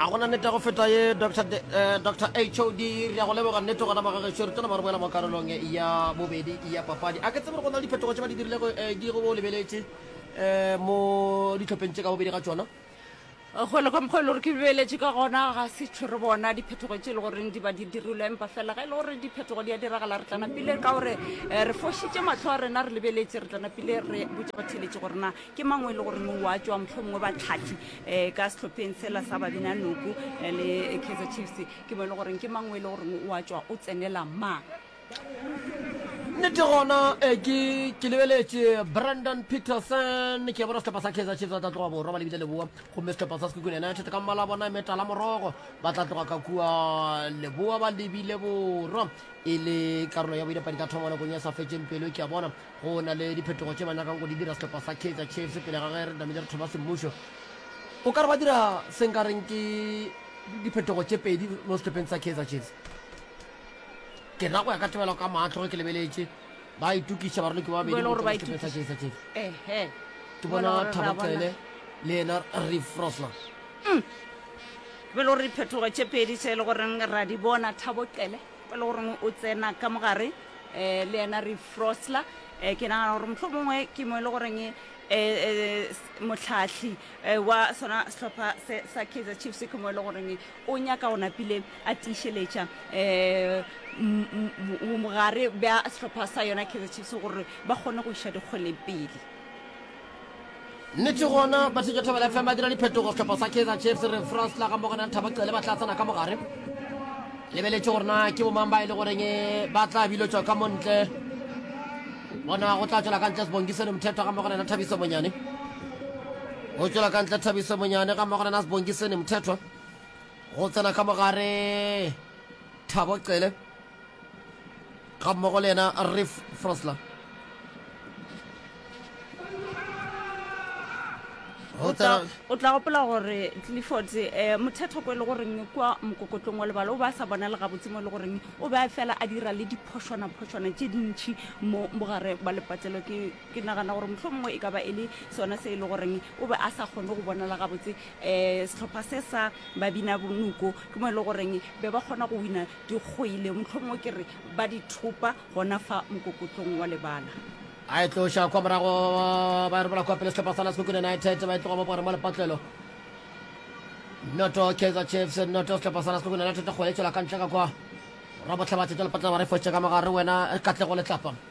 a gona nete go feta ye dr eh, hod re ya go leboga nnete gona magagešo re tona ba re boela mo karolong ya bobedi ya papadi a ke tsebe gore go na le diphetogo tse ba di dirile eh, di go bo lebeletše eh, mo ditlhopheng tse ka bobedi ga tsona gole ka mokgwa e le gore ke lebeletše ka gona ga se tshwere bona diphetogo tse e le goreng di ba di dirilwe empa fela ga e le gore diphetogo di a diragala re tlana pile ka gore re fošitše matlho a rena re lebeletše re tlana pile re botse ba theletše gorena ke mang o e le goreng o a tswa motlho mongwe batlhathi um ka setlhopheng sela sa babina noku eh, le kaizer chiefs ke mo e le goreng ke mang o e le goreng o a tswa o tsenela mang nnete gona eh, ke ke lebeletše brandon peterson ke bona setlhopha sa kaizer chiefs ba tla tloga borwa ba lebile leboa gomme setlhopha sa sekukune united ka mmala bona e metala morogo ba tla tloga ka kua leboa ba lebile borwa e le karolo ya boidapadi ka thoma nakong ya sa fetseng pelo ke a bona Go na le diphetogo tše ba nyakang go di dira sehlopha sa Kaizer Chiefs pele ga ge re tlamehile re thoma semmušo. O ka re ba dira se nka reng ke diphetogo tše pedi mo sehlopheng sa Kaizer Chiefs. Ke na go ya ka tebelo ka maatlo ge ke lebeletše ba itokiša baraloki ba babedi go tšwa sehlopheng sa Kaizer Chiefs. Ehe. Ke bona Thabo Cele le yena Reeve Frosler. Mm. Ke belo re diphetogo tše pedi tše e le goreng ra di bona Thabo Cele. e le goreng o tsena ka mogare um le yena re frosla um ke nagana gore motlho mongwe ke mo e le goreng um motlhatlhi wa sona sehlopha se sa kaizer chiefs ke mo e le goreng o nyaka go napile a tiišeletša um mogare bja sehlopha sa yona kaizer chiefs gore ba kgone go iša dikgweleng pele Nnete gona ba thitše Thobela FM ba dira diphetogo sehlopha sa Kaizer Chiefs re France la ga Mogana Thaba Cele ba tla tsena ka mogare lebeletše gore na ke bomang ba e le goreng ba tla bilotšwa ka montle bona go tla tswela ka ntle sebongisene mothetho ga mmogo lena thabiso monyane go tswela ka ntle thabiso monyane ga mmogo lena sebongisene mothetho go tsena ka mogare thabo cele ga mmogo le yena ref frosler o tla gopola gore clifford um eh, mothetho ko e le goreng kwa mokokotlong wa lebala o ba sa bona le gabotse mo e le goreng o be a fela a dira le diphošwanaphošwana tše dintšhi mo mogare ba lepatlelo ke nagana gore motlho mongwe e ka ba e le sone se e le goreng o be a sa kgone go bonala gabotse um setlhopha se sa babina bonoko ke mo e le goreng be ba kgona go wina Di kgoile, mohlomongwe ke re ba di thopa gona fa mokokotlong wa lebala. A e tloša kwa morago, ba robola kwa pele sehlopha sa la Sekhukhune United, ba e tloga bopore mo lepatlelo. Noto Kaizer Chiefs, noto sehlopha sa la Sekhukhune United, go e tšwela ka ntle ka kwa. Rabotlhabathe tša lepatlelo ba re fošitše ka mogare, wena Katlego Letlapa.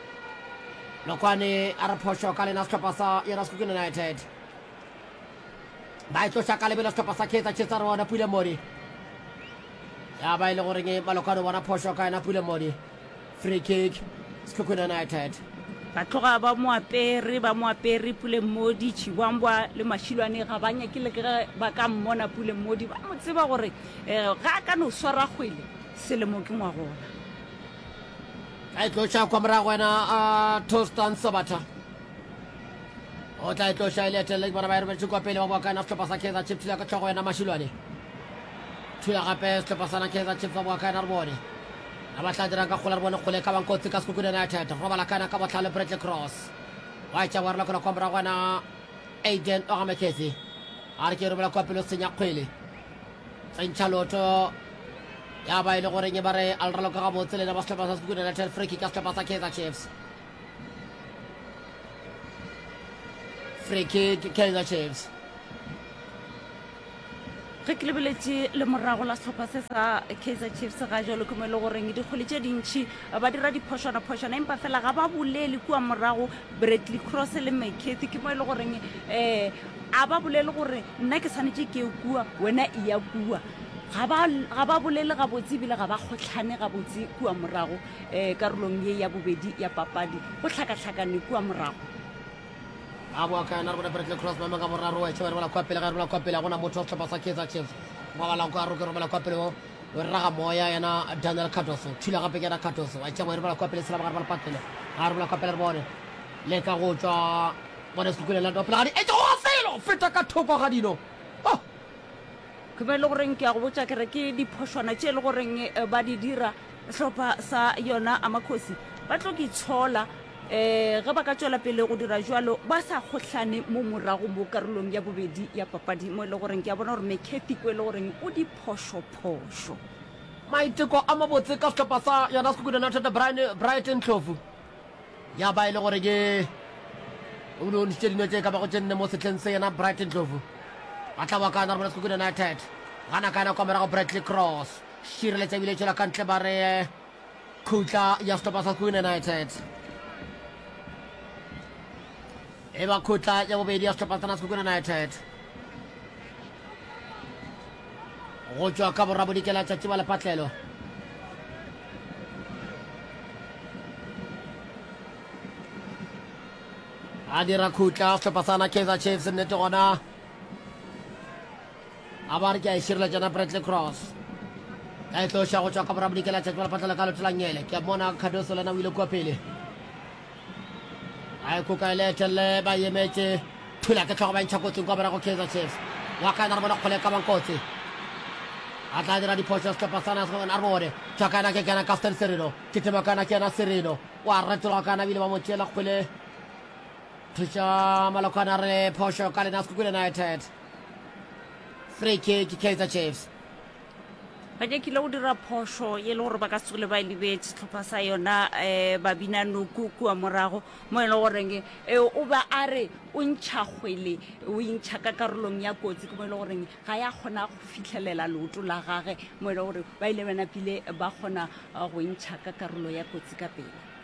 Lokwani a re phošo ka lena sehlopha sa yona Sekhukhune United ba e tloša ka lebelo sehlopha sa Kaizer Chiefs a re bona Pule Modi ya ba e le goreng e Malokwani o bona phošo ka yena Pule Modi free kick Sekhukhune United ba tloga ba mo apere ba mo apere Pule Modi Chibwambwa le Mashilwane ga ba nyake le ge ba ka mmona Pule Modi ba mo tseba gore eh, ga a ka no swara kgwele selemo ke ngwagona tla itlosha kwa morago wena a tostan sabatha o tla itlosha e leetelela bona ba e robeletše kwa pele ba boa ka yena setlhopha sa kaizer chief thula ka tlhogo wena mašilwane thula gape setlhopha sana kaizer chief ba boa ka yena re bone a ba tla dirang ka kgola re bone kgole ka bankotsi ka sekukune united robala ka yena ka botlhale bradley cross wa etša wa rolakola kwa morago wena aiden ogameketsi a re ke robela kwa pele o senya kgwele tsentšha loto ya ba e le goreng e ba re a le raloka gabotse lena ba setlhopha sa sekukune united free kick ya setlhopha sa kaizer chiefs free kick kaizer chiefs ge ke lebeletše le morago la setlhopha se sa kaizer chiefs ga jalo ke mo e le goreng dikgole tše dintšhi ba dira diphošwanaphošwana empa fela ga ba bolele kua morago Bradley Cross le McCarthy ke mo e le goreng eh a ba bolele gore nna ke tshwanetse ke kua wena e ya kua ga ba- ga ba bolele gabotse ebile ga ba kgotlhane gabotse kua morago um karolong ye ya bobedi ya papadi go tlhakatlhakane kua morago a boa ka yona re bone bradley cross maemo ka boraro wa echeba re bola kwa pele ga re bola kwa pele ga gona motho wa setlhopha sa kaizer chiefs ngwagala kwa roke romela kwa pele o o rera ga moya yena daniel cardoso thula gape ke yena cardoso a tšea moerebola kwa pele selabagare ba lepatele ga rebola kwa pele re bone le ka go tswa bone sekukune la dopela ga di etsa go felo feta ka thoko ga dino oh! ke be e le goreng ke ya go botsa kere ke diphošwana tše e le goreng eh, ba di dira hlopha sa yona amakgosi ba tlo ke tshola um ge ba ka tswela pele go dira jalo ba sa kgohlane mo morago mo karolong ya bobedi ya papadi mo e le goreng ke a bona gore mekhethi ko e le goreng o di phošophošo. Maiteko a mabotse ka sehlopha sa yona Sekhukhune United, Brian Bright Ndhlovu, ya ba e le gore ke o ne o ntšitše dino tše ka bago tše nne mo sehleng se. Yena Bright Ndhlovu a tla wa ka Narumela Sekhukhune United, gana ka nako morago Bradley Cross šireletša ebile e tšwela ka ntle ba re Khutla ya sehlopha sa Queen United. E ba khutla ya bobedi ya sehlopha sena sa Queen United. Go tšwa ka borabodikela tšatši ba lepatlelo. A dira khutla sehlopha sana Kaizer Chiefs nnete gona. a ba re ke a e širela tšena bradley cross ka e tloša go tšwa ka borabodikela tšatši bala patlela ka lotelangele ke mona cardoso lena o ile kua pele a e koka e le etelele ba emetše thula ke tlhogo ba ntšha kotsing kwa borago kaizer chiefs wa ka ena re bona kgole e ka bang kotsi a tla dira diphošo setlhopha sa nas a re bone tšwa ka ena ke kena kaftan serino titema ka ena ke ena serino o a retologa ka ena bile ba mo tšeela kgole thuša malokwana re phošo ka lena sekukule united free kick kaizer chiefs ba nyakile go dira phoso e le gore ba ka se tsogile ba e lebetse setlhopha sa yona um eh, babina noku kua morago mo e le goreng eh, o ba a re o ntšha kgwele o intšha ka karolong ya kotsi ke mo e le goreng ga ya kgona go fitlhelela leoto la gage mo e le gore ba ile bana pile ba kgona eh, go ntšha ka karolo ya kotsi ka pele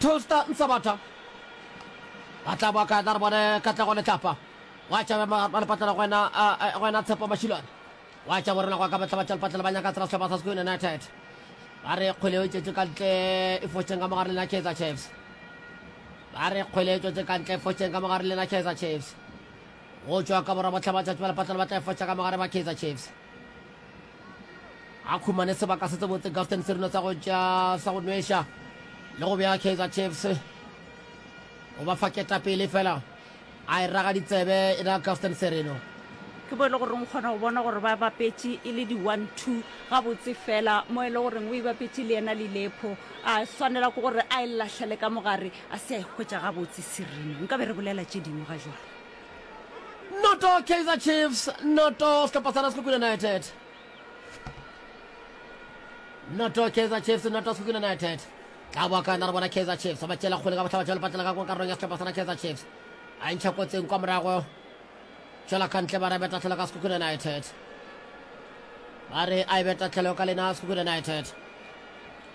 Toaster ntsha batha ba tla boa ka tla re bone katlego letlapa wa tša ba le patlela go wena go wena tshepo mashilwane wa tša borena go ka batla batša lepatlela ba nyaka tsela sehlopha sa Sekhukhune United ba re kgwele o tšetše ka ntle e fotšeng ka mogare lena Kaizer Chiefs ba re kgwele e tšwetše ka ntle e fotšeng ka mogare lena Kaizer Chiefs go tšwa ka borwa botlha ba tšatši ba lepatlela ba tla e fotša ka mogare ba Kaizer Chiefs a khumane sebaka se tsebotse gafton serino sa go tša sa go nweša le go bja kaizer chiefs o ba fa ketapele fela a e raga ditsebe e na gafton serino ke bo e le goreng o kgona go bona gore ba bapetše e le di-one two gabotse fela mo e le goreng o e bapetše le yena le lepho a swanela ke gore a e latlhele ka mogare a se a e hwetša gabotse serino nka be re bolela tše dingwe ga jwalo noto kaizer chiefs noto sehlopha sa nascook united noto kaizer chiefs noto nascook united ka boa ka yona re bona kaizer chiefs ba tšela kgole ka botlhaba jalo patlela ka karolong ya sehlopha sana kaizer chiefs a e ntšha kotseng kwa morago tšwela ka ntle ba re betatlhelo ka secook united ba re a e betatlhelo ka lena secook united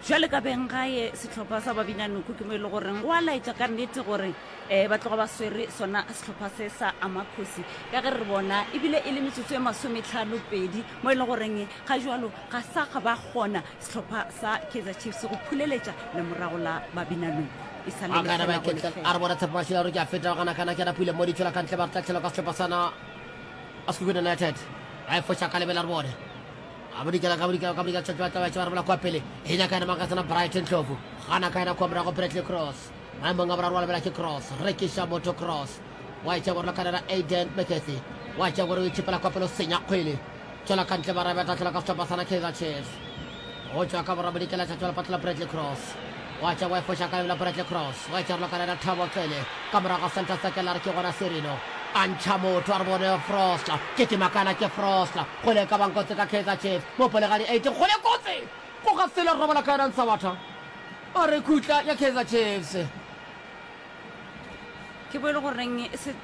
Bjale ka beng gae sehlopha sa babinanoko ke mo e le goreng go a laetša ka nnete gore um ba tloga ba swere sona sehlopha se sa amakgosi ka ge re bona ebile e le metsotso e masometlhano pedi mo e le goreng ga jalo ga sa ga ba kgona sehlopha sa kaizer chiefs go phuleletša lemorago la babinanoko e sa le Akana ba lefela go iketla lefela. a re bona tshepo ba šila gore ke a feta gana kana ke na pule mo ditšhola ka ntle ba re tla tšhelwa ka sehlopha sana a sekukune united a e foša ka lebela re bone a bodikela ka bodikela ka bodikela tšatši batlabatša ba rebola kwa pele e nyaka ena makatsana brighton tlofu gana ka ena kwa morago bradley cross maemong a boraro wa lebela ke cross rekiša motho cross wa etša gore lokanela aiden mcathy wa etša gore o itšhepela kwa pele o senya kgwele tšwela ka ntle barabe a tlatlela ka setlhopha sana kaizer chiefs go tšwa ka borabodikela tšatšwa lepatlela bradley cross Gwa tšwa gwa e foša ka yola Bradley Cross, gwa e tšarolwa ka lena Thabo Cele, ka morago ga Santa Sekela re ke gona Serino. A ntšha motho, a re bone Frost, ke ke makala ke Frost, kgole e ka bang kotsi ka Kaizer Chiefs, mopolegadi eight, kgole kotsi! Goga sele robola ka yona Nsawatha, a re khutla ya Kaizer Chiefs. ke bo e le goreng se-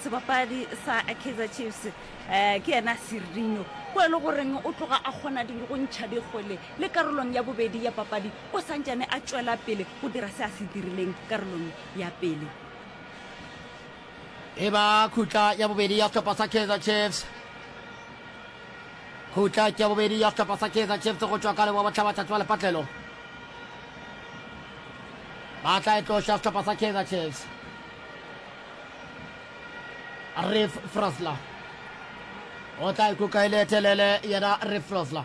sebapadi sa kaizer chiefs um ke yena serino bo e le goreng o tloga a kgona dilo go ntšha dikgole le karolong ya bobedi ya papadi o santšane a tšwela pele go dira se a se dirileng karolong ya pele. E ba khutla ya bobedi ya sehlopha sa Kaizer Chiefs. Khutla ke ya bobedi ya sehlopha sa Kaizer Chiefs go tšwa ka leboa bohlaba tšatši wa lepatlelo. Ba tla e tloša sehlopha sa Kaizer Chiefs. Ref Frosler o tla ikuka e le telele yena Ref Frosler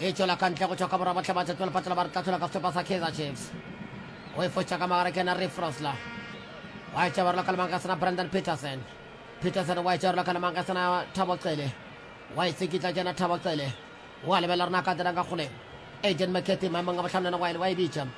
e tšwela ka ntle go tšwa ka borwa bohle ba tšatšwa lefatšela ba re tlathola ka sehlopha sa kaizer chiefs o e fotša ka magare ke ena re frosla wa e tšabarela ka lemang ka sena brandon peterson peterson wa e tšabarela ka lemang ka sena thabo cele wa e tsekitla ke ena thabo cele wa lebelela rena ka dirang ka kgoleng agent mccarthy maemong a botlhano ena wa e bitša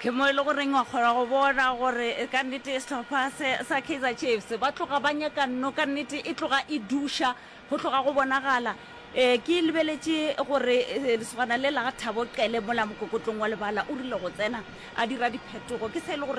Ke mo e le goreng wa kgona go bona gore ka nnete sehlopha se sa Kaizer Chiefs ba tloga ba nyaka nno, ka nnete e tloga e duša go tloga go bonagala. E, ke lebeletše gore e, lesogana le la ga Thabo Qele mola mokokotlong wa lebala o rile go tsena a dira diphetogo, ke se e le gore